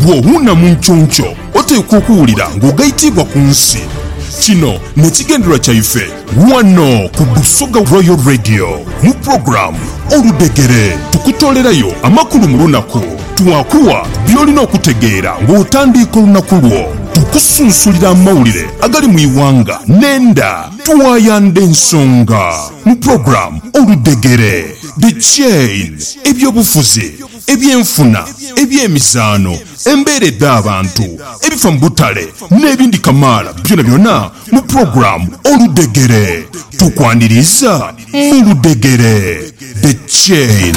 Bw'owuuna mu nkyonkyoo, oteekwa okuwulira ng'ogaitiibwa ku nsi. Kino n'ekigendererwa kyaife ghano ku Busoga Royal Radio. Mu pulogulaamu Oludhegere, tukutoolerayo amakulu mu lunaku. Twakugha by'olina okutegeera ng'otandiika olunaku lwo. Tukusunsulira amawulire agali mu ighanga n'enda. Tuwayandha ensonga mu program Oludhegere, The Chain, eby'obufuzi, eby'enfuna, eby'emizaano, embeera edh'abantu, ebifa mu butale n'ebindi kamaala byonabyona mu program Oludhegere. Tukwaniriiza mu Ludhegere, The Chain.